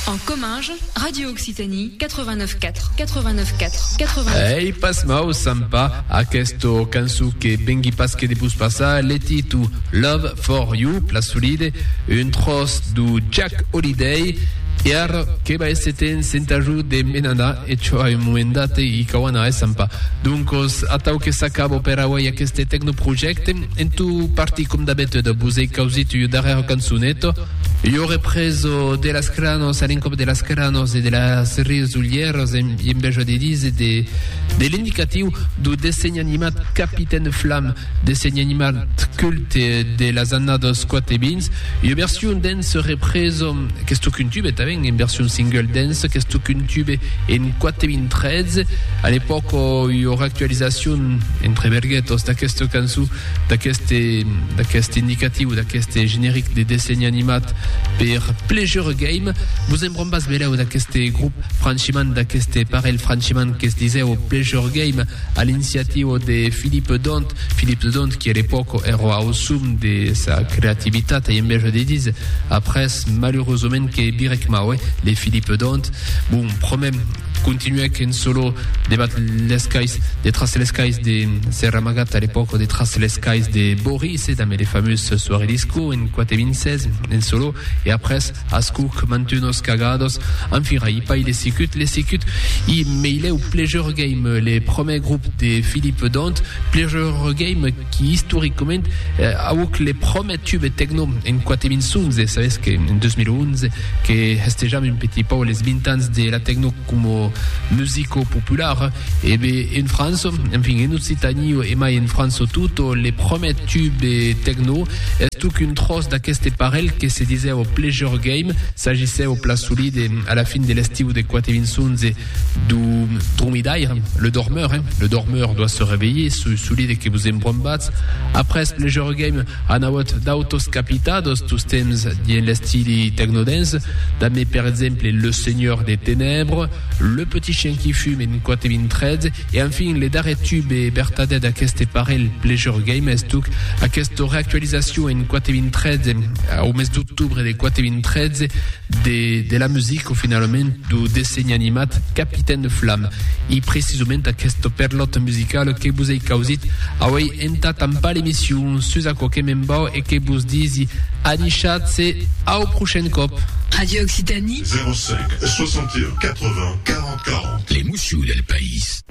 En comminge, Radio Occitanie 89 4, 89 4, 89. Ei pas mau, Sampa, aquesta cançó que vengui pas que de vos passar le titu Love for You, Plasolide, un tros du Jack Holiday, e ara que va esse temps senta jo de me n'anar, e çò a un moment date i cau anar, eh, Sampa? Doncos, atau que s'acaba per auei aqueste tecnoprojècte, en tot partir com d'abetüda vos ei causit ua darrèra cançoneta, Lo represo de las cranos a l'encòp de las cranos e de las resolhèras en bèja de dise de l'indicatiu dau dessenh animat Capitaine Flam, dessenh animat culte de las annadas 4 e 20. Ua version dens represo qu'estó cuntube tanben en version single dens qu'estó cuntube en 4 e 20 13. A l'epòca ua reactualizacion, entre verguetas, d'aquesta cançon d'aqueste indicatiu, d'aqueste generic de dessenh animat per Pleasure Game. Vos en brombas belèu d'aqueste grup, franchiment, d'aqueste parelh, franchiment, que es disèu Pleasure Game, a l'inciativo de Philippe Dont, Philippe Dont qui a l'epòca èra au sum de sa creativitat, ai enveja de díser, après, malheureusament, que birèc mau, eh, le Philippe Dont. Bon, promèm, Continuèc en solo debat les cais de tras les cais de Sèrra Amagat a l'epòca de tras les cais de Boris e damb le famós Soirée Disco en 426 en solo e après ascuc mantunos cagados enfin i paï le sicut le sicut i meilèu Pleasure Game le promèr grup de Philippe Dont Pleasure Game qui istoricament auc le promèr tube tecno en 426 sabes que en 2011 que hestejam un petit pauc les 20 ans de la tecno coma musico popular, e be en França, enfin en Occitanie e mai en França tot, le prumèr tube tecno estuc un tròç d'aqueste parelh que se disèva Pleasure Game, s'agissèva pla solide a la fin de l'estiu de 4 e 20 11, du dromidaire, le dormeur, hein, le dormeur doit se réveiller, sous solide que vous embrombats. Après Pleasure Game, anaot d'autos capitados, tous temps dien l'estili technodance, damé per exemple Le Seigneur des Ténèbres, Le Petit Chien qui Fume en 4.013, e enfin le darrer tube e vertadèr d'aqueste parelh Pleasure Game estuc aquesta reactualizacion en 4.013, au mes d'octubre de 4.013, de la music o finalament do dessenh animat Capitaine Flam. I precisament aquest perlòt musical que vos ei causit auei entà tampar l'emission sus aquò que me'n vau e que vos disi anichatz-se au prochain còp! Radio Occitanie. 05 61 80 40 40. L'emoció del país.